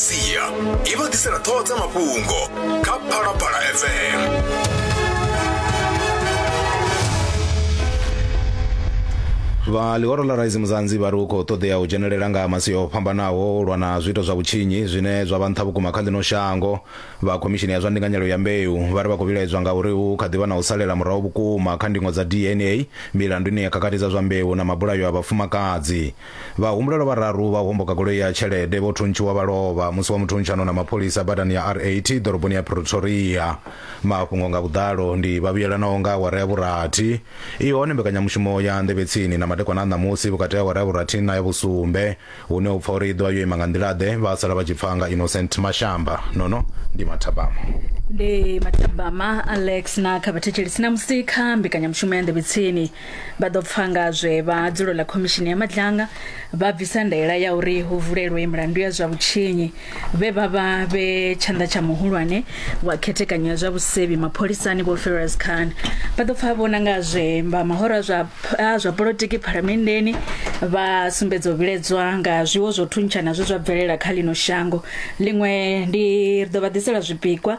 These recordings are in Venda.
sia i vha ḓisela ṱhoho dza mafhungo kha phalaphala fm vha ḽihoro ḽa raisi muzanzi vha ri hu khou ṱoḓea u dzhenelela nga masi o fhambanaho u lwa na zwiito zwa vhutshinyi zwine zwa vha nṱha vhukuma kha ḽino shango vha khomishini ya zwa ndinganyelo ya mbeu vha ri vha khou vhilaedzwa nga uri hu kha ḓi vha na u salela murahu vhukuma kha ndingo dza dna milandu ine ya khakhathi dza zwa mbeu na mabulayo a vhafumakadzi Vhahumbulelwa vhararu vha u homboka goloi ya tshelede vho thuntshiwa vha lovha musi wa muthuntshanona mapholisa badani ya R8 ḓoroboni ya Pretoria. Mafhungo nga vhuḓalo ndi vha vhuyelanaho nga awara ya vhurathi. I hone mbekanyamushumo ya Nḓevhetsini na madekwana a ṋamusi vhukati ha awara ya vhurathi na ya vhusumbe hune u pfa uri i ḓovha yo ima nga nḓila-ḓe vha sala vha tshi pfa nga Innocent Mashamba. Nono ndi Mathabama. Ndi Mathabama Alex na kha vhathetshelesi ṋamusi kha mbekanyamushumo ya Nḓevhetsini. Vha ḓo pfa nga zwe vha dzulo ḽa khomishini ya madlanga vha bvisa ndaela ya uri hu vulelwe milandu ya zwa vhutshinyi vhe vha vha vhe tshanḓa tsha muhulwane wa khethekanyo ya zwa vhusevhi mapholisani vho Ferrous Khan. Vha ḓo pfa vhona nga zwe vha mahora zwa zwa politiki phalamenndeni vha sumbedza u vhiledzwa nga zwiwo zwo thuntshana zwe zwa bvelela kha ḽino shango. Ḽiṅwe ndi ri ḓo vha ḓisela zwipikwa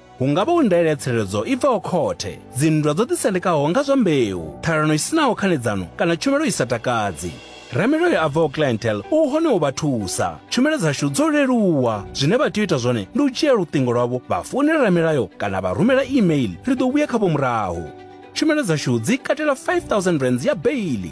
Hu nga vha u ndaela ya tsireledzo i bvaho khothe, dzinndwa dzo ḓisendekaho nga zwa mbeu, ṱhalano i si naho khanedzano kana tshumelo i sa takadzi. Ramilayo a bvaho Clientele u hone u vha thusa. Tshumelo dzashu dzo leluwa. Zwine vha tea u ita zwone ndi u dzhia luṱingo lwavho vha founela ramilayo kana vha rumela e-mail, ri ḓo vhuya khavho murahu. Tshumelo dzashu dzi katela R5000 ya beili.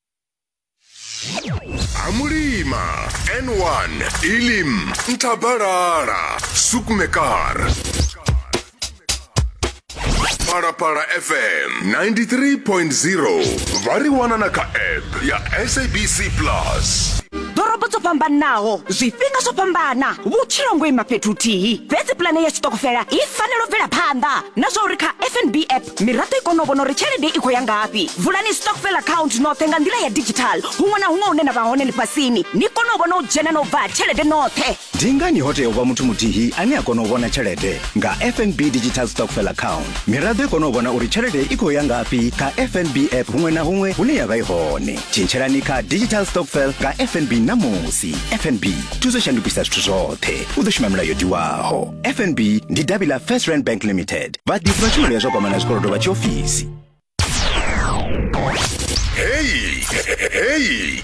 amulima n1 ilim nthabalala sukmekar phalaphala fm 93.0 vha ri wana na kha app ya sabc plus ḓorobo dzo fhambanaho zwifhinga zwo fhambana vhutshilo ngo ima fhethu huthihi fhedzi pulane ya tshiṱokofela i fanela u bvela phanḓa na zwa uri kha fnb app miraḓo i kone u vhona uri tshelede i khou ya ngafhi vulani stockfel account noṱhe nga nḓila ya digital huṅwe na huṅwe hune na vha hone ḽifhasini ni kone u vhona u dzhena na u bva tshelede noṱhe ndi ngani ho tea u vha muthu muthihi ane a kona u vhona tshelede nga fnb digital stockfel account miraḓo i kone u vhona uri tshelede i khou ya ngafhi kha fnb app huṅwe na huṅwe hune ya vha i hone tshintshelani kha digital stockfel nga fnb ṋamusi fnb thuso shandukisa zwithu zwoṱhe u ḓo shuma milayo tiwaho fnb ndi davhi ḽa first rand bank limited vha ḓisa tshumelo ya zwa kwama na zwikolodo vha tshiofisi heyi heyi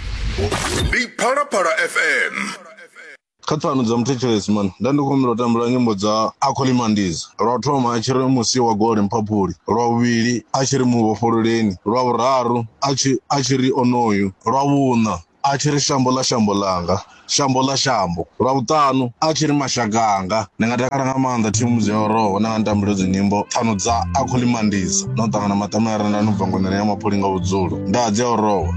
ndi phalaphala fm kha pfano dza muthetshelesi mani nda ndi khou humbela u tambela nyimbo dza akholimandiza lwa u thoma a tshi ri musi wa gole mphaphuli lwa vhuvhili a tshi ri muvhofhololeni lwa vhuraru a tshi a tshi ri onoyu lwa vhuṋa a tshi ri shambo ḽa shambo ḽanga shambo ḽa shambo lwa vhuṱanu a tshi ri mashaka anga ndi nga takala nga maanḓa thimu dzi ya roho na nga ntambelo dzi nyimbo pfano dza a khou limandisa no ṱangana maṱamela renda no bva ngonani ya maphuli nga vhudzulo nda dzi ya roho